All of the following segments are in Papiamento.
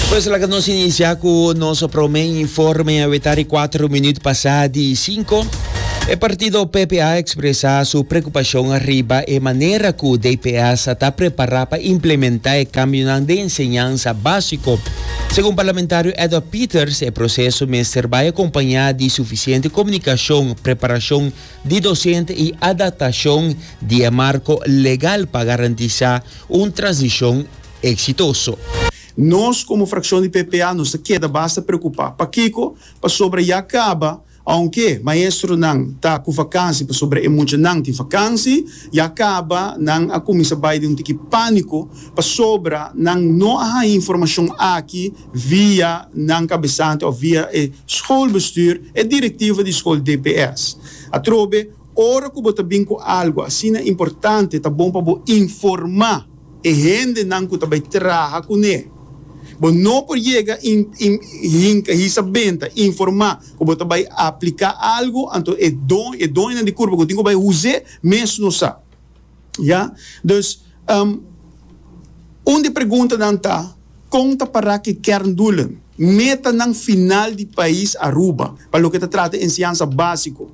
Pues laga nos inicia cu nos prome informe aweta di cuatro minuut pasa di cinco. E partido PP a expresa su preocupacion riba e manera cu DPS a ta prepara pa implementa e cambionan den enseñansa basico. Segun parlamentario Edward Peters e proceso mester bay acompaña di suficiente comunicacion, preparacion di docente y adaptacion di e marco legal pa garantisa un transicion exitoso. Nos como fraccion di PPA nos ta keda basta preocupa. Pakico? Pasobra ya caba, aunke maestronan ta cu vakansi pasobra e muchanan tin vakansi, ya caba nan a cuminsa bay den un tiki panico pasobra nan no a haña informacion aki, via nan kabesante of via e schoolbestuur e directiva di school dps. Atrobe ora ku bo ta bin ku algo asina importante ta bon pa bo informa e hende nan ku ta bai traha kune. Bo no por yega hinka hisa benta informa ku bo ta bai aplika algo anto e doño nan di kurpa ku tin ku bai huze mes no sa. Ya. Dus, um, un di preguntanan ta, Kon ta para ku e kerndoelen, metanan final di pais Aruba, pa loke ta trata enseñansa básiko,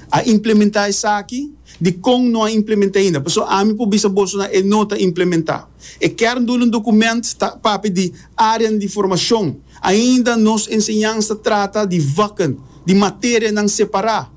a implementá esaki? Dikon no a implementá ainda? Pasobra ami por bisa bosonan e no ta implementá. E kerndoelen dokument ta papia di áreanan di formashon. Ainda nos enseñansa ta trata di vakken, di materianan separá.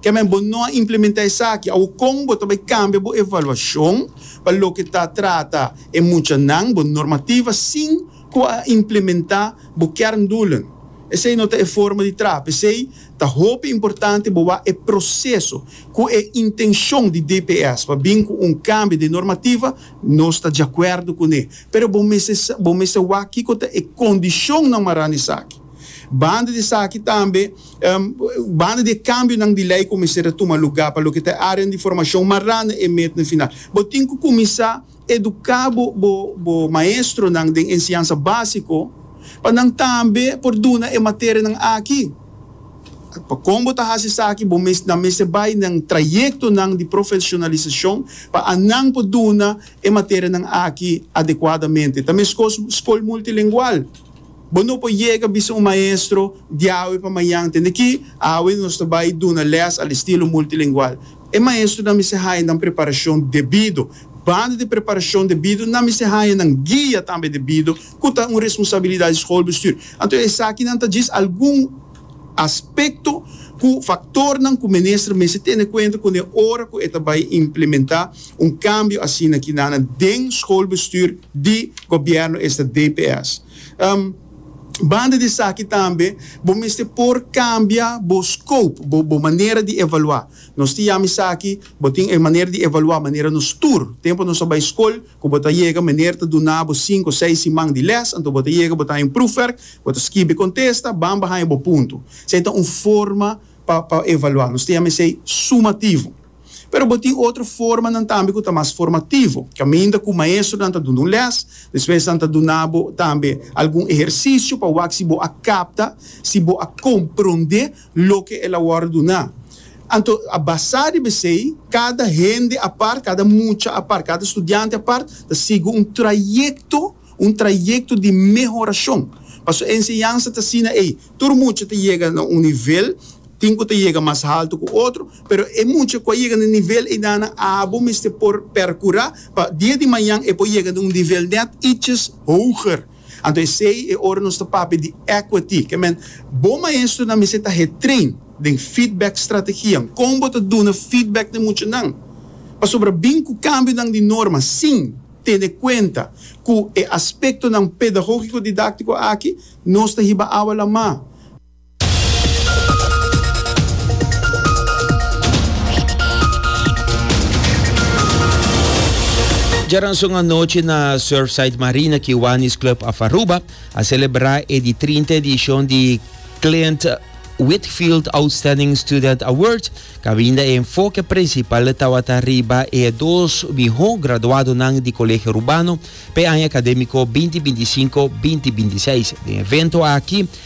Ke men bo no a implementá esaki? Awor kon bo ta bai kambia bo evaluashon pa loke ta trata e muchanan, bo normativa, sin ku a implementá bo kerndoelen? Esei no ta e forma di traha. P'esei ta hopi importante bo wak e proseso ku e intenshon di DPS pa bin ku un kambio den normativa. Nos ta diakuerdo kuné, pero bo mester bo mester wak kiko ta e kondishonnan mará na esaki. Banda di esaki tambe. Banda di e kambionan di lei ku mester a tuma lugá pa loke ta e árean di formashon mará na e met na final, bo tin ku kuminsá eduká bo maestronan den enseñansa básiko pa nan tambe por duna e materianan aki. Pa kon bo ta hasi esaki bo mes nan mester bai na trayektonan di profeshonalisashon pa anan por duna e materianan aki adekuadamente. Ta meskos skol multilengual. Bo no por yega bisa un maestro di awe pa mañan. Tende ki, awe nos ta bai duna lès al estilo multilingual. E maestrunan mester haña nan preparashon debido. Banda di preparashon debido, nan mester haña nan guia tambe debido, ku ta un responsabilidat di skolbestuur. Anto esakinan ta djis algun. Aspekto ku faktornan ku minister mester tene kuenta kune ora ku e ta bai implementá un kambio asina kinana den skolbestuur di gobièrnu esta DPS. Banda di esaki tambe bo mester por kambia bo scope, bo bo manera di evaluá. Nos tin yama esaki, bo tin e manera di evaluá manera nos tur, tempu nos ta bai skol, ku bo ta yega meneer ta duna bo sinku seis siman di les, anto bo ta yega bo ta haña un proefwerk, bo ta skibi kontesta, ban bo haña bo puntu. Esei ta un forma pa pa evaluá. Nos ta yama esei sumativo. Pero bo tin otro formanan tambe ku ta mas formativo, kaminda ku maestronan ta duna un les, despues nan ta duna bo tambe algun ehersisio pa wak si bo a kapta, si bo a komprondé. loke el a wòrdu duná. Anto a basá riba esei, kada hende apart, kada mucha apart, kada studiante apart ta sigui un trayekto, un trayekto di mehorashon. Pasobra e enseñansa ta asina ei, tur mucha ta yega na un nivel, tin ku ta yega mas haltu ku otro, pero e mucha ku a yega na e nivel einanan abo mester por perkurá pa dia di mañan e por yega na un nivel nèt iches hoger. Anto esei e ora nos ta papia di equity. Ke men, Bo maestronan mester ta hertrain den feedback strategianan. Kon bo ta duna feedback n'e muchanan pasobra bin ku kambionan di norma sin tene kuenta ku e aspektonan pedagogiko-didaktiko aki nos ta hiba awa lamá? Djaranson anochi na Surfside Marina Kiwanis Club of Aruba a celebra e di 30 edicion di Clint Whitfield Outstanding Student Award, cabinda e enfoque principal tawata riba e dos miho graduadonan di Colegio Rubano pe aña academico 2025-2026. Den evento aki,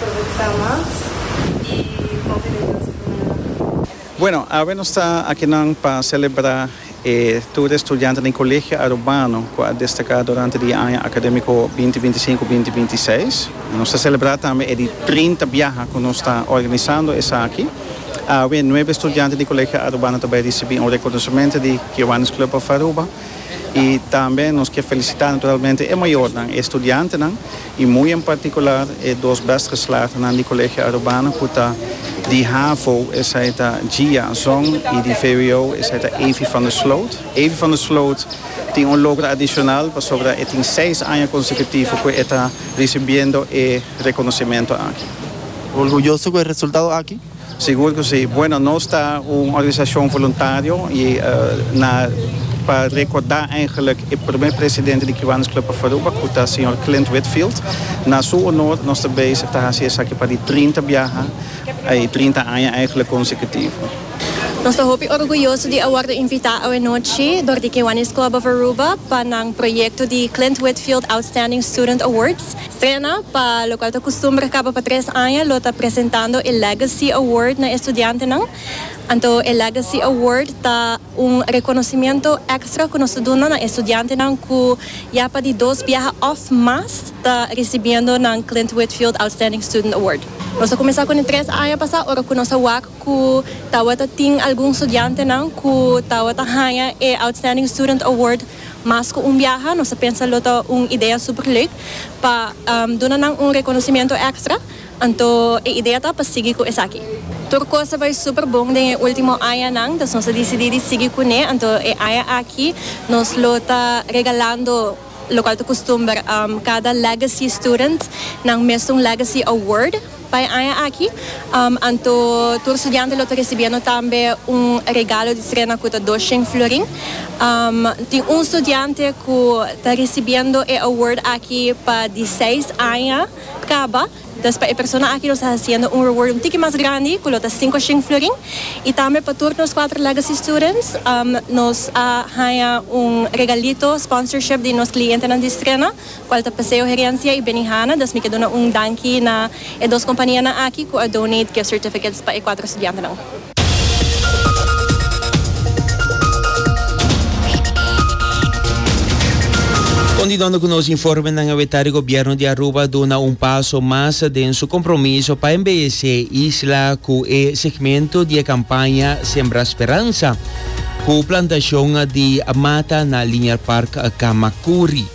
Progresá mas i propi reunionan si pone na. Bueno, awe nos ta akinan pa selebrá e tur di estudiantenan di Colegio Arubano cu a destaká durante di e aña académico binti binti i sinku, binti binti i seis. Nos ta selebrá tambe e di trinta biaha cu nos ta organisando esaki. Awe nuebe estudiante di Colegio Arubano ta bai ricibí un reconocemento di Kiwanis Club of Aruba i tambe nos ke felicitá naturalmente e mayornan, e estudiantenan y muy en particular e dos best geslaagdenan di Colegio Arubana cu ta di havo, esai ta Gia Zong, y di vwo, esai ta Avy van der Sloot. Avy van der Sloot tin un logro adicional pasobra e tin seis aña consecutivo cu e ta ricibiendo e reconocimiento aki. Orgulloso cu e resultado aki? Sigur cu si. Bueno, nos ta un organisacion voluntario y na pa recorda eigenlijk e primer presidente di Cubanos Club of Aruba cu ta señor Clint Whitfield. Na su honor nos ta bezig ta haci esaki pa di trinta biaha y trinta aña eigenlijk consecutivo. Nos ta hopi orguyoso di a wordo invita awenochi door di Kiwanis Club of Aruba pa nan proyecto di Clint Whitfield Outstanding Student Awards. Trena, pa lokual ta kustumber kaba pa tres aña, lo ta presentando e Legacy Award na e studiantenan. Anto e Legacy Award ta un rekonosementu èkstra ku nos ta duna na e studiantenan ku ya pa di dos biaha òf mas ta risibiendo nan Clint Whitfield Outstanding Student Award. Nos a kuminsá kuné tres aña pasá ora ku nos a wak ku tabata tin algun studiantenan ku tabata haña e Outstanding Student Award. Mas cu un biaha, nos ta pensa lo ta un idea super leuk pa duna nan un reconocimiento extra, anto e idea ta pa sigui cu esaki. Tur cos a bay super bon den e ultimo añanan, dus nos a dicidi di sigui cu ne, anto e aña aki nos lo ta regalando locual ta custumber cada Legacy Student nan mes un Legacy Award. Pa e aña aki, anto tur studiante lo ta risibiendo tambe un regalo di trena cu ta dos shen florin. Tin un studiante cu ta risibiendo e award aki pa di seis aña caba, dus pa e persona aki nos ta haciendo un reward un tiki mas grandi cu lo ta cinco shen florin. Y tambe pa tur nos cuatro Legacy Students nos a haña un regalito, sponsorship di nos clientenan di Strena Cual ta Paseo Herencia y Benihana, dus mi ke duna un danki na e dos companianan aki cu a donate gift certificates pa e cuatro estudiantenan. Continuando cu nos informenan e weta di Gobierno di Aruba a duna un paso mas den su compromiso pa embelece e isla cu e segmento di e campaña Sembra Speransa cu plantacion di mata na Linear Park Camacuri.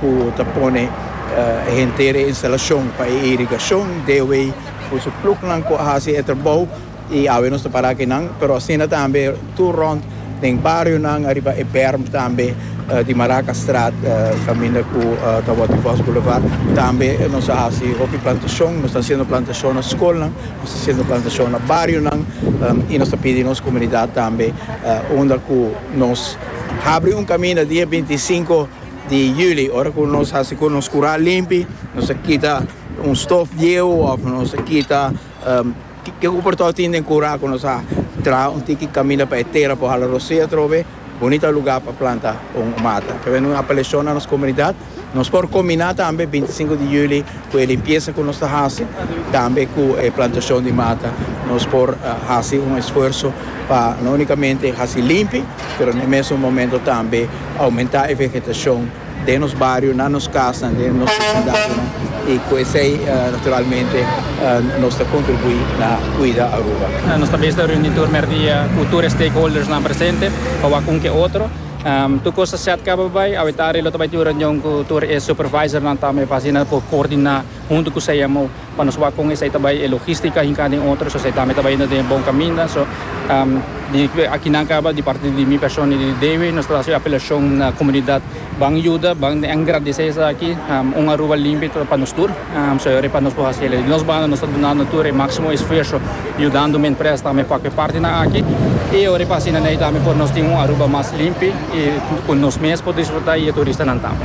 ku ta pone e henter e instalashon pa e irigashon dewe ku su pluknan ku a hasi e trabou i awe nos ta para kinan pero asina tambe tur rònt den barionan ariba e bèrm tambe di Marakastraat kaminda ku ta wòrdu Vos Boulevard tambe nos a hasi hopi plantashon nos ta hasiendo plantashon na skolnan nos ta hasiendo plantashon na barionan i nos ta pidi nos komunidat tambe unda ku nos. Habri un kaminda dia bintisinko di yuli, ora ku nos hasi ku nos kura limpi, nos a kita un stof dieu òf nos a kita ke ku por tou tin den kura ku nos a traha un tiki kaminda pa e tera por hala rosea atrobe, bunita lugá pa planta un mata. P'esei nos a apeleshona nos komunidat. Nos por kombiná tambe bintisinku di juli ku e limpiesa ku nos ta hasi, tambe ku e plantashon di mata. Nos por hasi un esfuerso pa no únikamente hasi limpi, pero na e mesun momento tambe oumentá e vegetashon den nos bario, na nos kasanan, den nos vesindadonan i ku esei naturalmente nos ta kontribuí na kuida Aruba. Nos ta bisa reuní tur merdia ku tur e stakeholdersnan presente pa wak un ku e otro. Tur cosa set caba bay. Awe tarde lo ta bay tin un reunion cu tur e supervisornan tambe pa asina por coordina hunto cu CMO pa nos wak con esey ta bay e logistica hinca den otro. So esey tambe ta bay yendo den e bon caminda. So di akinan caba di parti di mi persona y di Dewi nos ta haci e apelacion na comunidad. Ban yuda, ban engradece esaki. Un Aruba limpi pa nos tur. Señor, e pa nos por hasi elei. Di nos banda nos ta dunando tur e máximo esfuerso yudando mi empresa tambe pa cu e partinan aki. Y ora e pa asina n'ey tambe por nos tin un Aruba mas limpi y cu nos mes por disfruta y e turistanan tambe.